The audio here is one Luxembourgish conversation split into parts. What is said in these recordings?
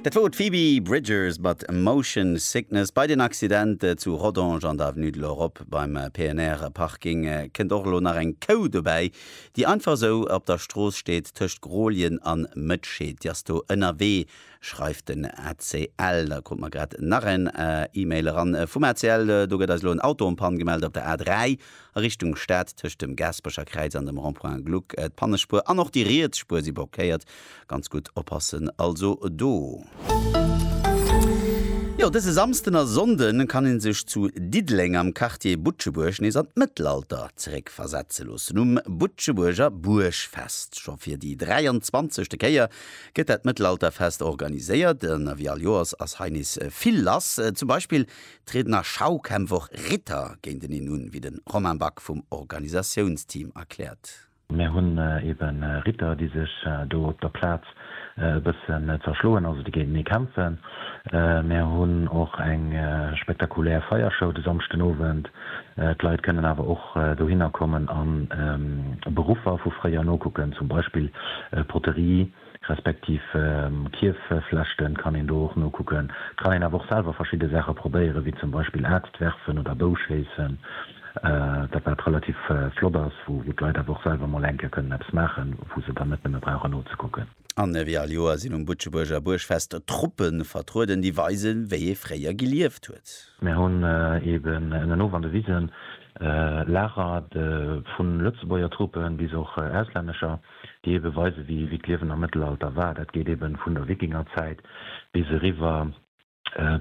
Dat wor d'Phoebe Bridgers mat Motion Sickness. Bei den Accident zu Rodange an der Avenue de l'Europe beim PNR-Parking kënnt och elo nach eng Kou dobäi, déi einfach esou op der Strooss steet tëscht Grolien an Mëtschee. Déi ass do ënnerwee, schreift den ACL. Da krut mer grad nach en Email eran vum ACL, Do gëtt eis elo en Auto en panne gemellt op der A3. a Richtung Stad tëscht dem Gaaspercherkräiz an dem Rond-point Gluck. D'Pannespuer an och déi riets Spuer si blockéiert. Ganz gutt oppassen also do. Jo, dëse Samsden a Sonnde kann ee sech zu Diddeleng am Quartier Butschebuerg nees an d'Mëttelalter zeréckversetze loossen. Um Butschebuerger Buergfest, scho fir déi 23. Kéier, gëtt dat Mëttelalterfest organiséiert. Wéi all Joers ass hei nees vill lass, zum Beispill trieden a Schaukämpf och Ritter géinteneen un, wéi de Romain Back vum Organisatiounsteam erkläert. Mir hunn ebe Ritter, déi sech do op der Plaz e bëssen zerschloen, also déi géintenee kämpfen. Mir hunn och eng spektakulär Feiershow de Samschden Owend. D'Leit kënnen awer och dohinner kommen a Beruffer vu fréier nokucken, zum Beispill Poterie. respektiv Kierfeflechten, kann een do och nokucken. Et kann een awer och selwer verschidde Saache probéieren, wéi zum Beispill Aarzt werfen oder Bou schéissen, dat wat relativ flott ass, wou d'Leit awer och selwer mol eng Kéier kënnen eppes maachen, wou se dann net nëmme brauchen nozekucken. An ewéi all Joer sinn um Butschebuerger Buergfest Truppe vertrueden, déi weisen, wéi ee fréier gelieft huet. Mir hunn eeben ënnenof an de Wisen Lager vun Lëtzebuerger Truppe bis och auslännescher. déi ebe weise wéi d'Liewen am Mëttelalter war. Dat geet ebe vun der Wikingerzäit bis eriwwer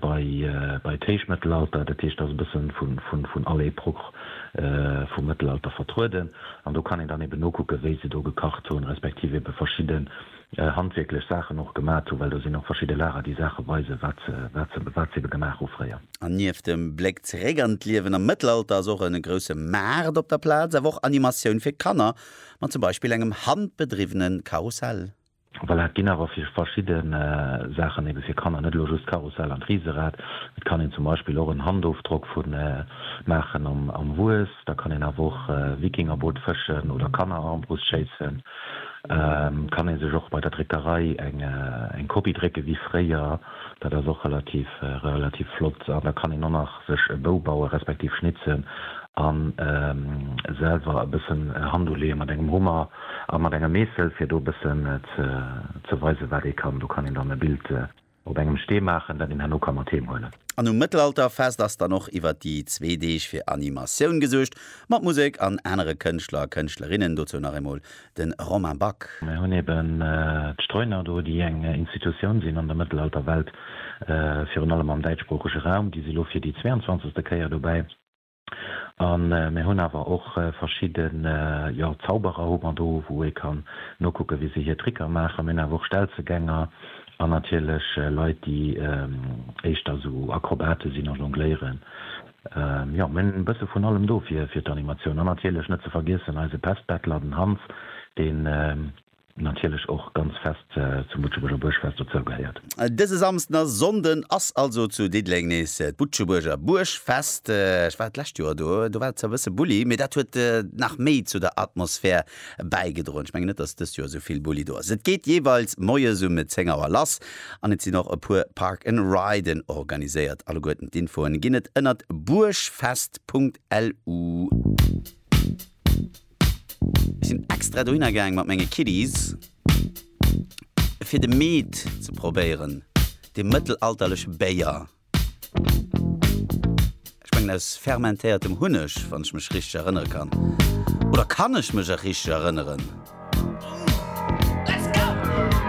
bei d'Héichmëttelalter. Dat heescht, et ass e bësse vun all Epoch vum Mëttelalter vertrueden an do kann een dann ebe nokucke wéi se do gekacht hunn, respektiv ebe verschidde handwierklech Saachen och gemat hunn, well do sinn och verschidde Lager déi Saache weisen, wat se ebe gemaach hu fréier. An nieft dem Bléck zeréck an d'Liewen am Mëttelalter ass och e grousse Maart op der Plaz, awer och Animatioun fir Kanner Mat zum Beispill engem handbedriwwene Karussell. Voilà, et ginn awer fir verschidde Saachen ebe fir Kanner net elo just d'Karussell an d'Riserad. Et kann een zum Beispill och en Handofdrock vu maachen am Wues. Da kann een awer och Wikingerboot fëschen oder Kannerarmbrust schéissen. Kann ee sech och bei der Dréckerei eng Kopie drécke wéi fréier. Dat ass och relativ flott. An da kann een och nach sech e Bou bauen, respektiv schnitzen a selwer e bëssen Hand uleeë mat engem Hummer a mat engem Meessel, fir do e bëssen ze weisen, wat ee kann. Do kann een dann e Bild op engem Stee maachen, dat een herno ka mat heem huelen. An um Mëttelalterfest ass dann och iwwert déi zwee Deeg fir Animatioun gesuergt, mat Musek an anere Kënschtler a Kënschtlerinnen. Dozou nach eemol de Romain Back. Mir hunn eben d'Streuner do, déi eng Institutioun sinn an der Mëttelalterwelt, virun allem am däitschsproochege Raum. Déi si lo fir déi zweiundzwanzegste Kéier dobäi. A mir hunn awer och verschidde, jo, Zauberer hu mer do, wou ee kann nokucke wéi se hir Tricker maachen. Mir hunn awer och Stelzegänger an natierlech Leit, déi éischter esou Akrobate sinn a jongléieren. Jo, mir hunn e bësse vun allem do fir d'Animatioun. An natierlech net ze vergiessen eise Pestbettler, den Hans, deen natierlech och ganz fest zum Butschebuerger Buergfest dozou gehéiert. Dëse Samsden a Sonnden ass also zu Diddeleng nees d'Butschebuerger Buergfest. Ech war d'lescht Joer do, do war et zwar e bësse bulli, mee dat huet nach méi zu der Atmosphär bäigedroen. Ech mengen net, dass dëst Joer esou vill Bulli do ass. Et geet jeeweils moies um 10 Auer lass an et sinn och e puer Park and Riden organiséiert. Alleguerten d'Infoen ginn et ënnert buergfest.lu. Ech sinn extra dohinner gaang mat menge Kiddies, fir de Mead ze probéieren, dee mëttelalterleche Béier. Ech mengen aus fermentéiertem Hunneg, wann ech mech richteg erënnere kann. Oder kann ech mech och richteg erënneren?